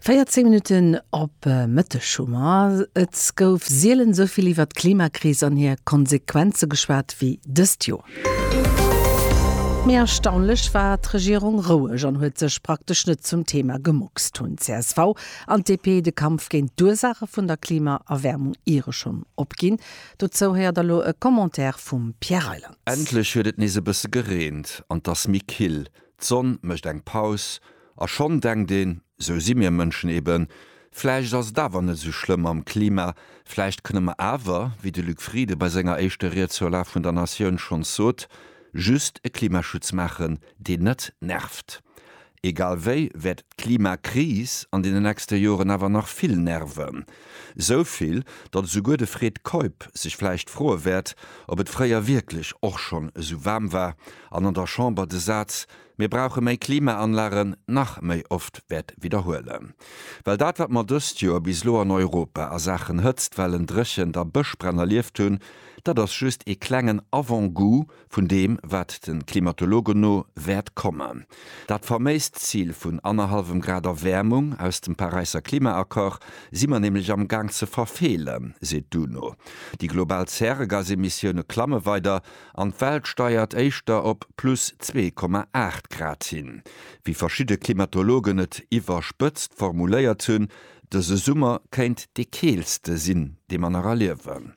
14 Minutten op Mëtteg hu mer. Et gouf sielen esou vill iwwert d'Klimakris an hir Konsequenze geschwat wéi dëst Joer. Mee erstaunlech war d'Regierung roueg an huet sech praktesch net zum Thema gemuckst. Hunn d'CSV an d'DP de Kampf géint d'Ursaache vun der Klimaerwäermung iere schonn opginn? Dozou héiert elo e Commentaire vum Pierre Reyland. Endlech huet et nees e bësse gereent an 't ass méi kill. D'Sonn mécht eng Paus, a schonn denkt een, Esou si mir Mënschen eben, vläicht ass et awer net esou schlëmm mam Klima, vläicht kënne mer awer, wéi de Luc Frieden bei senger éischter Ried zur Lag vun der Natioun schonns sot, just e Klimaschutz maachen, deen net nervt. Egal wéi wäert d'Klimakris an deenen nächste Joren awer nach vill nerven. Esou vill, datt esouguer de Fred Keup sech vläicht froe wäert, ob et fréier wierklech och schonn esou waarm war an an der Chamber de Saz Mir brauche méi Klimaanlagen nach méi oft wäert widderhuelen. Well dat, wat mer dëst Joer bis elo an Europa a Saachen Hëtztwellen, Dréchent a Bëschbränn erlieft hunn, dat ass just ee klengen Avant-goût, vun deem wat de Klimatologen no wäert kommen. Dat faméist Zil vun annerhallwem Grad Erwäermung aus dem Paräisser Klimaaccord si mer nämlech am Gaang ze verfeelen, seet d'UNO. Déi global Zäregasemissioune klamme weider an d'Welt steiert éischter op plus 2,8 Grad hin. Wéi verschidde Klimatologen et iwwerspëtzt formuléiert hunn, dëse Summer kéint dee keelste sinn, dee mer nach erliewen.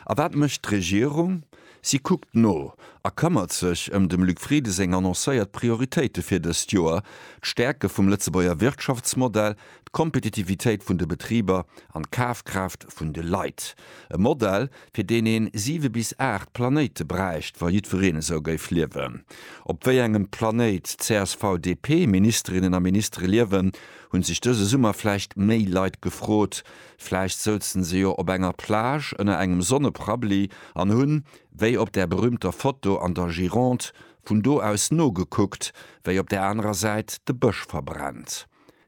A wat mécht d'Regierung? Si kuckt no a këmmert sech ëm dem Luc Frieden seng annoncéiert Prioritéite fir dëst Joer, d'Stäerke vum Lëtzebuerger Wirtschaftsmodell, d'Kompetitivitéit vun de Betriber an d'Kafkraaft vun de Leit. E Modell, fir deen een siwe bis aacht Planéite bräicht, wa jiddwereen esou géif liewen. Op wéi engem Planéit d'CSV-DP-Ministerinnen a Ministere liewen, hu sech dëse Summer vläicht méi Leit gefrot, Vläicht souzen se jo op enger Plage ënner engem Sonneprabli an hunn, wéi op där berühmter Foto an der Gironde, vun do aus nogekuckt, wéi op där anerer Säit de Bësch verbrennt.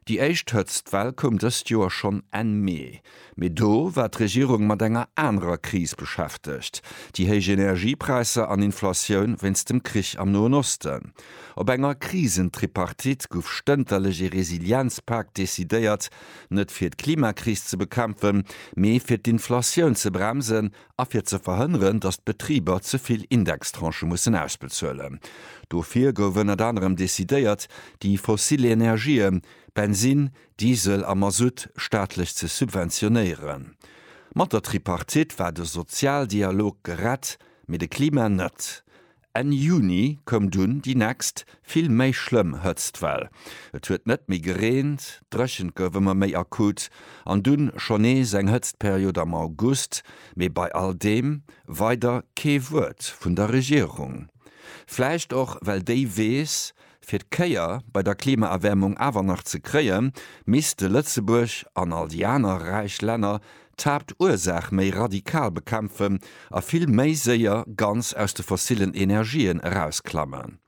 Déi éischt Hëtztwell koum dëst Joer schonn Enn Mee, mee do war d'Regierung mat enger anerer Kris beschäftegt, déi héich Energiepräisser an Inflatioun wéinst dem Krich am Noen Osten. Op enger Krisentripartite gouf stënterlech ee Resilienzpak decidéiert, Net fir d'Klimakris ze bekämpfen, mee fir d'Inflatioun ze bremsen a fir ze verhënneren, datt d'Betriber ze vill Indextranchë mussen ausbezuelen. Dofir gouf ënnert anerem decidéiert, déi fossil Energien, Bensinn, Diesel a Masutt, staatlech ze subventionéieren. Mat der Tripartite war de Sozialdialog gerett, mee de Klima net. Enn Juni koum dunn déi nächst, vill méi schlëmm Hëtztwell. Et huet net méi gereent, d'Dréchent gouf ëmmer méi akut an dunn schonn nees eng Hëtztperiod am August, mee bei all deem weider kee Wuert vun der Regierung. Vläicht och well déi weess, Fir d'Kéier bei der Klimaerwäermung awer nach ze kréien, misste Lëtzebuerg, an all déi aner räich Länner, d'Haaptursaach méi radikal bekämpfen a vill méi séier ganz aus de fossillen Energien erausklammen.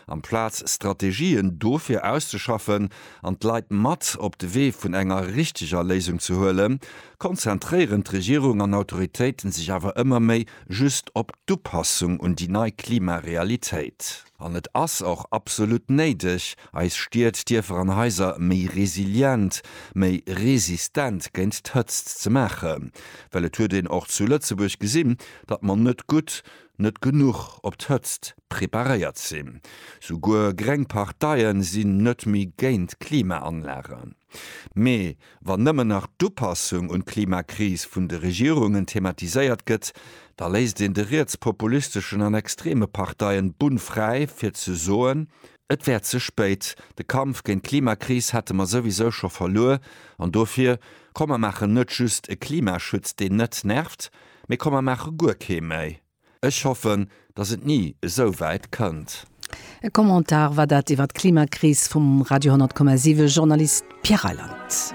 Amplaz Strategien dofir auszeschaffen an d'Leit mat op de Wee vun enger richteger Léisung ze huelen, konzentréieren d'Regierung an Autoritéiten sech awer ëmmer méi just op d'Upassung un déi nei Klimarealitéit. An et ass och absolut néideg, eis Stied, Dierfer an Haiser méi resilient, méi resistent géint d'Hëtzt ze maachen. Well et huet een och zu Lëtzebuerg gesinn, datt mer net gutt, net genuch op d'Hëtzt preparéiert sinn. Souguer gréng Parteie sinn net méi géint Klimaanlagen. Mee wann nëmmen nach d'Upassung un d'Klimakris vun de Regierungen thematiséiert gëtt, da léisst een de rietspopulisteschen an extreme Parteien d'Bunn fräi fir ze soen, et wär ze spéit, de Kampf géint d'Klimakris hätte mer souwisou scho verluer an dofir, komm mer maachen net just e Klimaschutz deen net nervt, mee komm mer maache guer kee méi. Ech hoffen, dass et ni esou wäit kënnt. E Commentar war dat iwwer d'Klimakris vum Radio 10,7 Journalist Pierre Reyland.